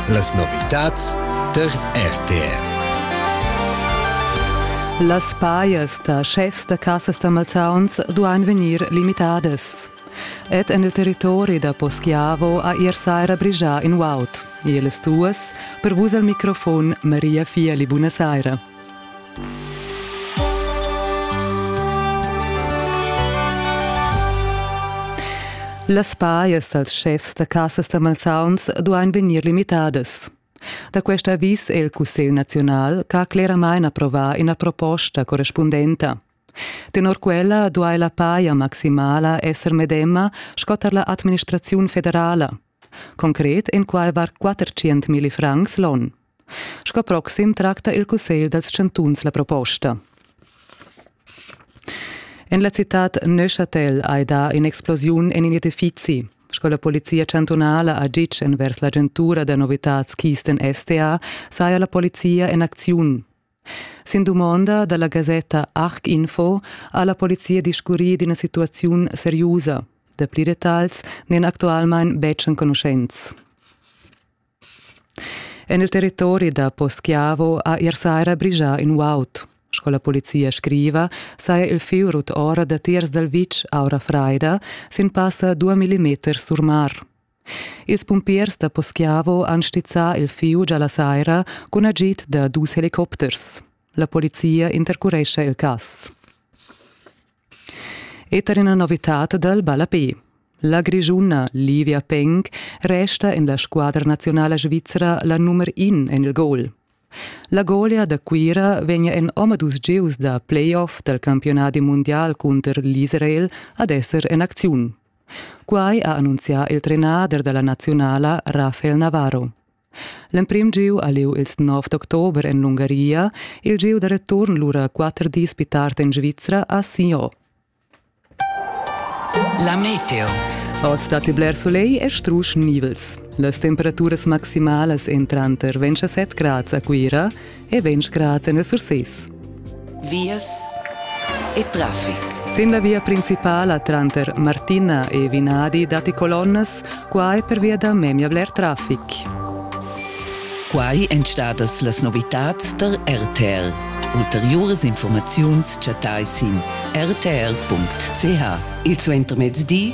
Las novitads tar RTR. Las pajas da schefs da cassas da Malzauns duain vegnir limitadas. Ed en il territori da Poschiavo ha ier saira brigià in uaut. Ils duas, per vus al microfon Maria Fieli, buona saira. Las pajas dals schefs da casas da malsauns duain vegnir limitadas. Da quest avis è il Cussegl naziunal ch'ha cleramain approvà ina proposta correspundenta. Tenor quella duai la paja maximala esser medema sco tar la administraziun federala, Concret enqualvar 400.000 francs l'on. Sco proxim tracta il Cussegl dals chantuns la proposta. En la citad Neuchâtel hai dà in'explosiun en in edifizi. Sco la polizia chantunala ha ditg envers l'agentura da novitads Kisten STA, saja la polizia en acziun. Sin dumonda dalla gasetta Arc Info ha la polizia discurri d'ina situaziun seriusa. Dapli detagls n'èn actualmain betg enconuschents. En il territori da Poschiavo ha ier saira brigià in uaut. Sco la polizia scriva, saja il fiurut ora datiers dal vitg aura fraida sin passa dua millimeters sur mar. Ils pumpiers da Poschiavo han stizzà il fieu già la saira cun agid da dus helicopters. La polizia intercurescha il cass. E tar ina novitad dal ballapé. La Grischuna Livia Peng resta en la squadra nazionala svizra la nummer in en il goal. La golia da Cuira vegnia en omadus gieus da playoff dal campionadi mundial cunter l'Israel ad esser en acziun. Quai ha annunzià il trenader da la naziunala Rafael Navarro. L'emprim giu ha lieu ils 9 d'october en l'Ungaria, il giu da return lura quatter dis pli tard en Svizra a Sion. La meteo. Oz datti bler soleil e strusch nivels. Las temperaturas maximalas èn tranter 27 grads a Cuira, e vegn scrats en Surses. Vias e traffic. Sin la via principala tranter Martina e Vinadi datti colonnas, quai pervia da memia bler traffic. Quai èn stadas las novitads tar RTL. Ulteriuras informaziuns chattai sin rtr.ch. Il suentermezdi